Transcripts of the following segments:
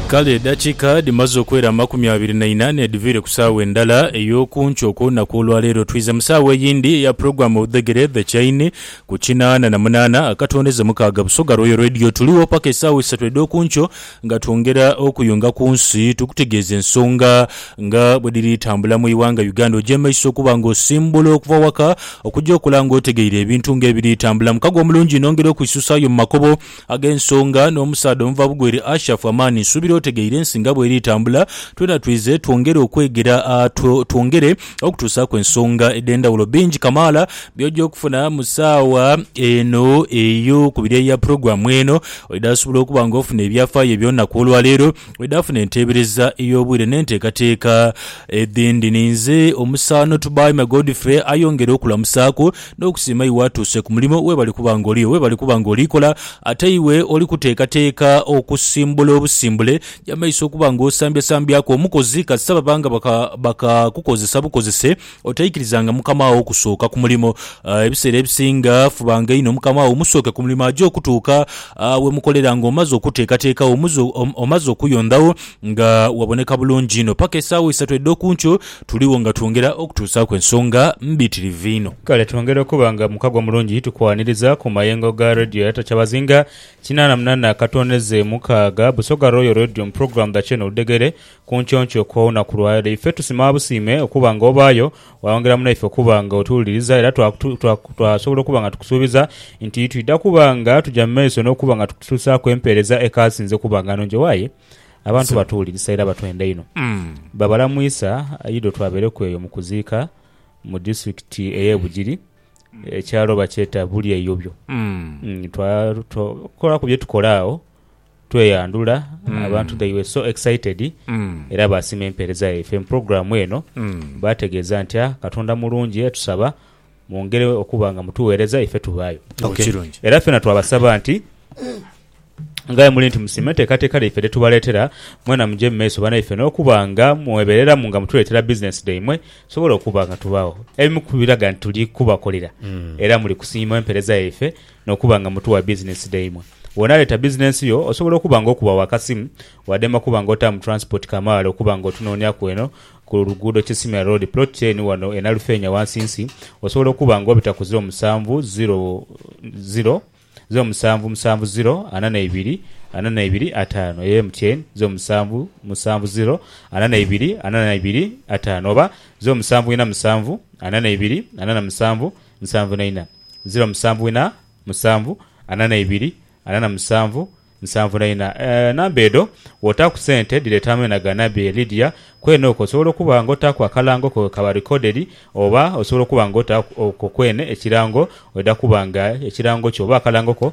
Kale edakiika dhimaze okwera amakumi abiri na ina n'edhiviire ku saawa endala ey'oku nkyo okw'olunaku olwaleero, twidha mu saawa eyindi eya pulogulaamu Obudhegere The Chain ku kinaana na munaana akatondeze mukaaga Busoga Royal Radio. Tuligho paka esaawa isatu edh'oku nkyo nga twongera okuyunga ku nsi tukutegeeze ensonga nga bwe dhiri tambula mu ighanga Uganda. Ogyemaiso okuba nga osimbula okuva waka okugya okola nga otegeire ebintu nga ebiri tambula. Mukago omulungi nongera okwisuusaayo mu makubo. Ag'ensonga, n'omusaadha omuvabugho eri Ashafu amaani, nsuubira otegeire ensi nga bw'eri tambula. Twena twize twongere okwegera, twongere okutuusaaku ensonga edh'endhawulo. Bingi kamaala by'oja okufuna mu saagha eno ey'okubiri eya pulogulaamu eno. Oidha sobola okuba nga ofuna ebyafaayo eby'olunaku olwaleero. bwedhafuna enteebereza ey'obwire n'enteekateeka edhindi. Ninze omusaano Tubaime Godfrey ayongere okulamusaaku n'okusiima iwe atuuse ku mulimo webale kuba nga oli webale kuba nga oli kola ate iwe oli kuteekateeka okusimbula obusimbule y'amaiso okuba nga osambyasambyaku omukozi kasita baba nga bakakukozesa bukozese Otaikirizanga mukama wo kusooka ku mulimo. Ebiseera ebisinga fubanga inho mukama wo omusooke ku mulimo aje okutuuka we mukolera nga omaze okuteekateekagho, omaze okuyondhagho nga waboneka bulungi inho. Paka esaawa isatu edh'oku nkyo tuliwo nga twongera okutuusaaku ensonga mbitirivu inho. Kale twongera okuba nga mukago mulungi tukwaniriza ku mayengo ga Radio ya Tacha Bazinga kinaana munana katooneze mukaaga, Busoga Royal Radio mu pulogulaamu dha Kyeeno Oludhegere Ku nkyonkyoo kw'olunaku lwa leero, ife tusima busiime okuba nga obaayo waayongera mu naife okuba nga otuwuliriza era twasobola okuba nga tukusuubiza nti twidha kuba nga tuja mu maiso n'okuba nga tukutuusaaku empeereza ekaasinze okuba nga nnungi. Aye abantu batuwulirisa era batwenda inho. Babala mu Isa Ido twabeereku eyo mu kuziika mu disitulikiti ey'e Bugiri, ekyalo bakyeta Bulyeyobyo. Twakolaku bye tukola agho. tweyandhula abantu they were so excited era baasima empeereza yaife mu pulogulaamu eno. Baategeeza nti, Ah, Katonda mulungi aye tusaba mwongere okuba nga mutugheereza ife tubaayo. Okay. Kirungi. Era ffena twabasaba nti nga bwe muli nti musiima enteekateeka dhaife dhe tubaleetera, mwena muje mu maiso banaife n'okuba nga mwebeereramu nga mutuleetera bizinensi dhaimwe tusobole okuba nga tubaagho. Ebimu ku biraga nti tuli kubakolera era muli kusiima empeereza yaife N'okuba nga mutu wa bizinensi dhaimwe, bw'onaaleeta bizinensi yo osobola okuba nga okuba wa kasimu wadema kuba nga otaamu taransipoti kamaala okuba nga otunooniaku eno ku luguudo Kisimira Road plot ten wano e Nalufeenya wansinsi osobola okuba nga obita ku ziro musanvu ziro ziro ziro musanvu musanvu ziro ana naibiri ana naibiri ataano eyo MTN ziro musanvu musanvu ziro ana naibiri ana naibiri ataano oba ziro musanvu ina musanvu ana naibiri ana namusanvu nsanvu na ina, ziro musanvu ina musanvu ana na ibiri ana na musanvu nsanvu na ina. Enamba edho wotaaku sente dhireeta ameena ga Nabbi e Lydia. Kwene okwo osobola okuba nga otaaku akalango ko kekaba recorded oba osobola okuba nga otaaku okwo kwene ekirango oidha kuba nga ekirango kyo oba akalango ko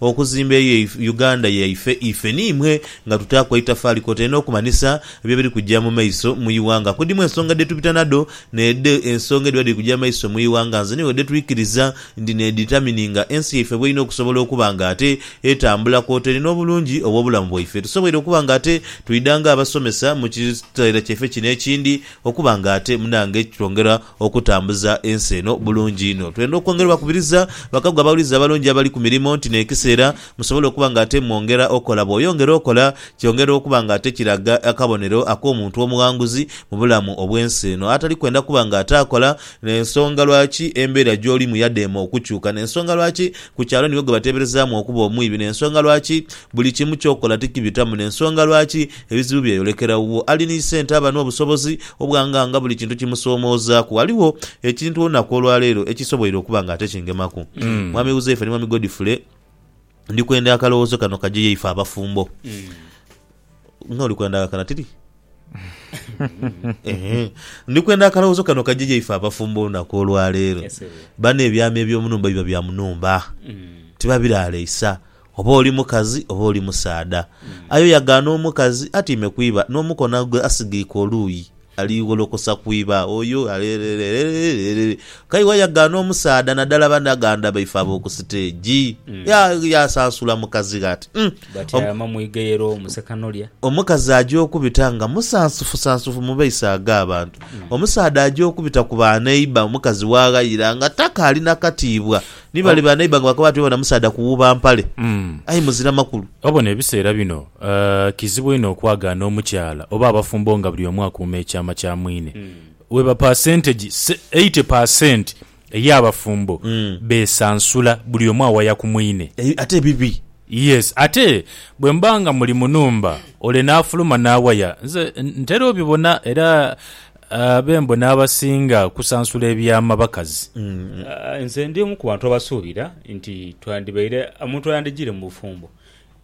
Okuzimba eyo Uganda yaife ife ni imwe nga tutaaku aitafaali kwotaire n'okumanhisa byo biri kuja mu maiso mu ighanga. Kudimu ensonga dhe tubita nadho n'edho ensonga edhiba dhiri kuja mu maiso mu ighanga nze n'iwe dhe twikiriza nti n'edhitamininga ensi yaife bw'erina okusobola okuba nga ate etambula kwotaire n'obulungi obw'obulamu bwaife. Tusoboire okuba nga ate twidha nga abasomesa mu kiseera kyaife kino ekindi okuba nga ate munange kitwongera Okutambuza ensi eno bulungi inho, twendha okwongera obakubiriza bakago abawulize abalungi abali ku mirimo nti n'ekiseera musobola okuba nga ate mwongera okola. Bw'oyongera okola, kyongera okuba nga ate kiraga akabonero ak'omuntu omughanguzi mu bulamu obw'ensi eno, atali kwenda kuba nga ate akola. N'ensonga lwaki embeera gy'olimu yadheema okukyuka, n'ensonga lwaki ku kyalo niwe gwe bateeberezaamu okuba omwibi, n'ensonga lwaki buli kimu ky'okola tikibitamu, n'ensonga lwaki Ebizibu byeyolekera wo ali ni sente aba n'obusobozi obwanga nga buli kintu kimusomoozaaku. Ghaligho ekintu olunaku olwaleero ekisoboire okuba nga ate kingemaku. Mwami Huzaifa ni Mwami Godfrey, ndi kwenda akalowoozo kano kaje yaife abafumbo. Nga oli kwenda akakana tiri? Ehe. Ndi kwenda akalowoozo kano kaje yaife abafumbo olunaku olwaleero. Bano ebyama eby'omu nhumba biba bya mu nhumba. Tibabiraaleisa. Oba oli mukazi oba oli musaadha, aye oyagaana omukazi atiime ku iba n'omukono gwe asigeike oluuyi, aligholokosa ku iba oyo aleereereereereere. K'aye wayagaana omusaadha naddala banaganda baife ab'oku siteegi, yaasansula mukazi ghe ati, Umm! Batyama mu igeyero mu Sekanolya. Omukazi aja okubita nga musansufusansufu mu maiso ag'abantu. Omusaadha aja okubita ku baneiba omukazi w'aghayira nga takaali na katiibwa Ni bale ba neighbour nga bakoba bati webona musaadha kuwuuba mpale. Aye muzira makulu. Obona ebiseera bino kizibu inho okwagaana omukyala oba abafumbo nga buli omu akuuma ekyama kya mwine. Weba paasentegi eighty per cent ey'abafumbo besansula buli omu awaya ku mwine. Ate bibi. Yes, ate bwe muba nga muli mu nhumba ole n'afuluma n'awaya. Nze ntera obibona era Abembo n'abasinga okusansula ebyama bakazi. Nze ndi omu ku bantu abasuubira nti twandibaire omuntu ayandijiire mu bufumbo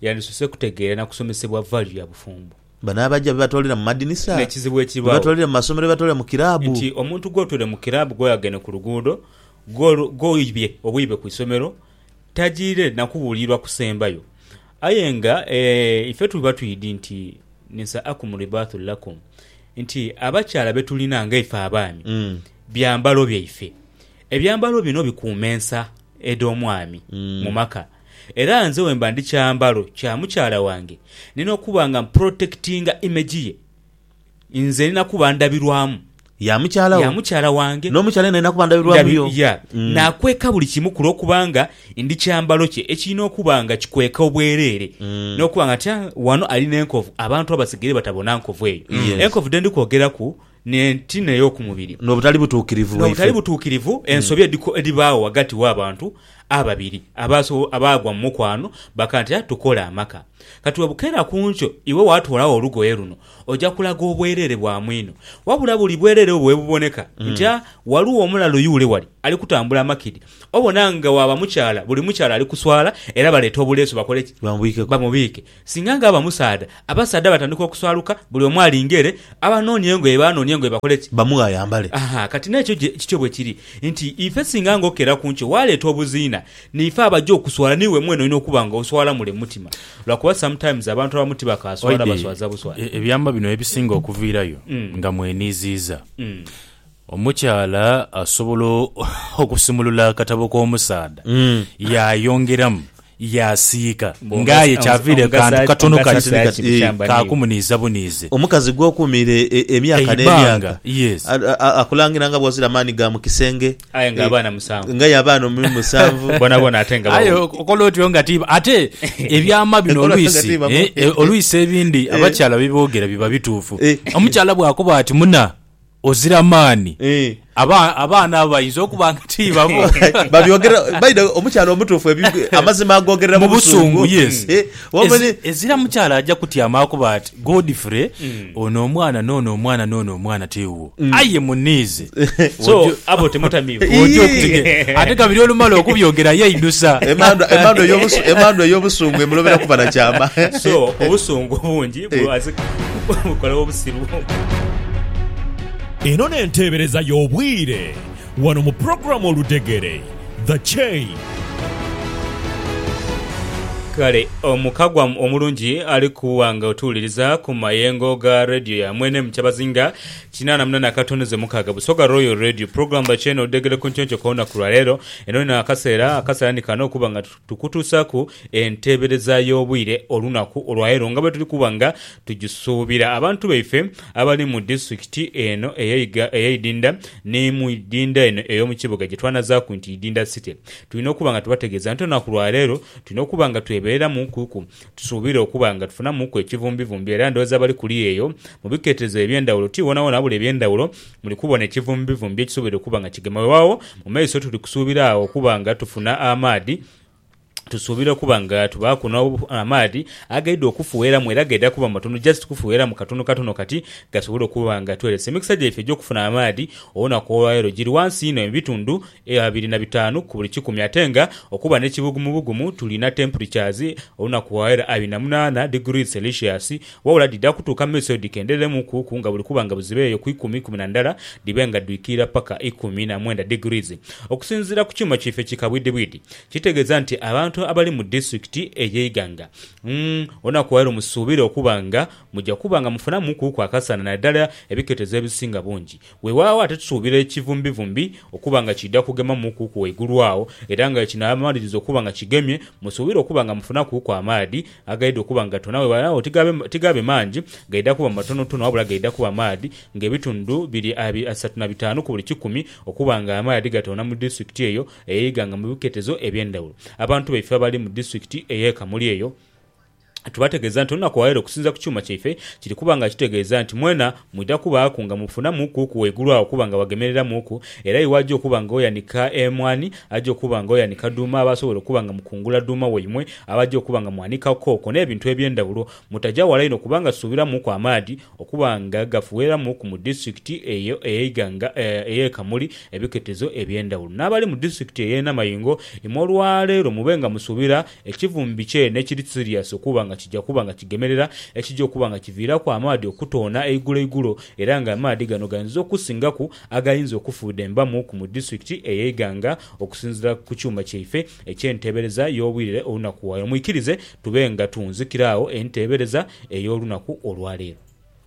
yandisose kutegeera na kusomesebwa value ya bufumbo. Bano abaja bebatoolera mu madinisa, N'ekizibu ekibaawo bebatoolera mu masomero, bebatoolera mu kiraabu. nti omuntu gw'otoole mu kiraabu, gw'oyageene ku luguudo, gw'oibye obwiibe ku isomero, tajiire na kubuulirwa kusembayo. Aye nga ife tuba twidhi nti Nisaakum ribaathu lakum, nti abakyala be tulina nga ife abaami, byambalo byaife. Ebyambalo bino bikuuma ensa edh'omwami mu maka. Era nze wemba ndi kyambalo kya mukyala wange, nina okuba nga mpurotekitinga image ye. nze ndina kuba ndabirwamu ya mukyala wo, ya mukyala wange, n'omukyala yena alina kuba ndabirwamu yo. Ya. Mm. Naakweka buli kimu ku lw'okubanga ndi kyambalo kye ekirina okuba nga kikweka obwereere, Mm. n'okuba nga tya wano ali n'enkovu abantu abasigaire batabona nkovu eyo. Mm. Yes. Enkovu dhe ndi kwogeraku n'enti n'ey'oku mubiri, N'obutali butuukirivu bwaife. n'obutali butuukirivu, ensobi edhiko- edhibaawo ghagati w'abantu Ababiri abaaso abaagwa mu mukwano bakantera tukole amaka. Kati webukera ku nkyo iwe waatoolagho olugoye luno, oja kulaga obwereere bwa mwino. Wabula buli bwereere obwo webuboneka nti a waliwo omulalu yuule wali ali kutambula makidi, obona nga waaba mukyala buli mukyala ali kuswala era baleete obuleesu bakole ki? Bamubiike. Singa nga aba musaadha, abasaadha batandika okuswaluka, buli omu alinga ere, abanoonia engoye baanoonia engoye bakole ki? Bamughe ayambale. Aha, kati n'ekyo je kityo bwe kiri, nti ife singa nga okera ku nkyo waaleeta obuziina, n'ife abaja okuswala n'iwe mwene olina okuba nga oswala mule mu mutima. Lwakuba sometimes abantu abamu tibakaaswala, Oidhi, baswaza buswaza. ebyama bino ye bisinga okuviirayo nga mweniiziiza. Omukyala asobola okusumulula akatabo k'omusaadha yaayongeramu yaasiika nga aye kyaviire kantu katono kali ka kumuniiza buniize. Omukazi gw'okuumiire emyaka n'emyaka akulangira nga bw'ozira maani ga mu kisenge nga aye abaana musanvu. Aye okola otyo nga ti. Ate ebyama bino oluisi oluisi ebindi abakyala bye boogera biba bituufu. Omukyala bw'akoba ati muna. Ozira maani. Eh. Aba- abaana abo bayinza okuba nga ti babo. babyogera baida omukyala omutuufu ebi- amazima agogerera mu busungu yes Eh, wabula ni- Ezi- ezira mukyala aja kutyama akuba ati godfrey ono omwana noono omwana noono omwana tiwuwo aye muniize So, Ojo- abo temutamiibwa. Ii. oja okutegera ate kabiri olumala okubyogera yeidusa emandwa emandwa ey'obusu- emandwa ey'obusungu emulobera kuba na kyama So, obusungu bungi Eno n'enteebereza y'obwire wano mu pulogulaamu Oludhegere, The Chain. Kale omuka gwamu omulungi ali kuwa nga otuwuliriza ku mayengo ga Radio ya mwene mu kyabazinga kinaana mu nana akatondoze mukaaga Busoga Royal Radio. Pulogulaamu The Chain Oludhegere ku ntionco kw'olunaku lwa leero. Eno n'akaseera, akaseera ni kano okuba nga. Tukutuusaku enteebereza y'obwire olunaku olwaleero nga bwetuli kuba nga tugisuubira. Abantu baife abali mu disitulikiti eno ey'eiga ey'eidinda ni mu idinda eno ey'omukibuga gyetwanazaaku nti Idinda City tulina okuba nga tubategeeza nti olunaku lwaleero tulina okuba nga twebereramu kuku Tusuubira okuba nga tufunamuku ekivumbivumbi era ndhooza abali kuli eyo mu biketezo eby'endhawulo ti woonawoona wabula eby'endhawulo muli kubona ekivumbivumbi ekisoboire okuba nga kigema. Weewaawo, mu maiso tuli kusuubira agho okuba nga tufuna amaadhi. Tusuubira okuba nga tubaaku n'amaadhi agaidha okufugheramu era gaidha kuba matono, just kufugheramu katono katono kati, gasobole okuba nga tweelesa. Emikisa gyaife egy'okufuna amaadhi olunaku olwaleero giri ghansi inho mu bitundhu Eyo abiri na bitaanu ku buli kikumi. Ate nga okuba n'ekibugumubugumu, tulina temperatures olunaku wa era abiri na munaana degrees Celsius, wabula dhidha kutuuka mu maiso dhikendhereremuuku ku nga buli kuba nga buziba eyo ku ikumi, ikumi na ndala dhibe nga dhwikirira paka ikumi na mwenda degrees. Okusinziira ku kyuuma kyaife ki kabwidhibwidhi, kitegeeza nti abantu abali mu disitulikiti eye Iganga, umm, olunaku wa leero musuubire okuba nga muja kuba nga mufunamuuku ku akasana, naddala ebiketezo ebisinga bungi. Weewaawo ate tusuubira ekivumbivumbi okuba nga kiidha kugema mu kuuku waigulu agho, era nga ekinabamaliriza okuba nga kigemye, musuubire okuba nga mufuna kuuku amaadhi agaidha okuba nga gatona. Weewaawo tigaabe mangi, gaidha kuba matonotono, wabula gaidha kuba maadhi ng'ebitundu biri asatu na bitaanu ku buli kikumi okuba ng'amaadhi gatona mu disitulikiti eyo ey'eighanga mu biketezo eby'endhaghulo. Abantu baife abali mu disitulikiti ey'e Kamuli eyo, Tubategeeza nti olunaku olwaleero okusinziira ku kyuuma kyaife kiri kuba nga kitegeeza nti mwena mwidha kubaaku nga mufunamuuku ku waigulu agho okuba nga wagemereramuuku era iwe aja okuba nga oyanika emwaani aja okuba nga oyanika dhuuma abaasobola okuba nga mukungula dhuuma waimwe abaja okuba nga mwanika kooko n'ebintu eby'endhawulo mutaja wala inho kubanga tusuubiramuuku amaadhi okuba nga gafuweeramuuku mu disitulikiti eyo ey'eighanga ey'e Kamuli ebiketezo eby'endhawulo. N'abali mu disitulikiti ey'e Namayingo imwe olwaleero mube nga musuubira Ekivumbi kye ne kiri siriasi okuba nga kija kuba nga kigemerera, ekija okuba nga kiviiraku amaadhi okutoona eiguloigulo era nga amaadhi gano gainza okusingaku agayinza okufuudha embamu ku mu disitulikiti eye Iganga okusinziira ku kyuuma kyaife ekye nteebereza y'obwirere olunaku waire. Mwikirize tube nga tunzikira agho enteebereza ey'olunaku olwaleero.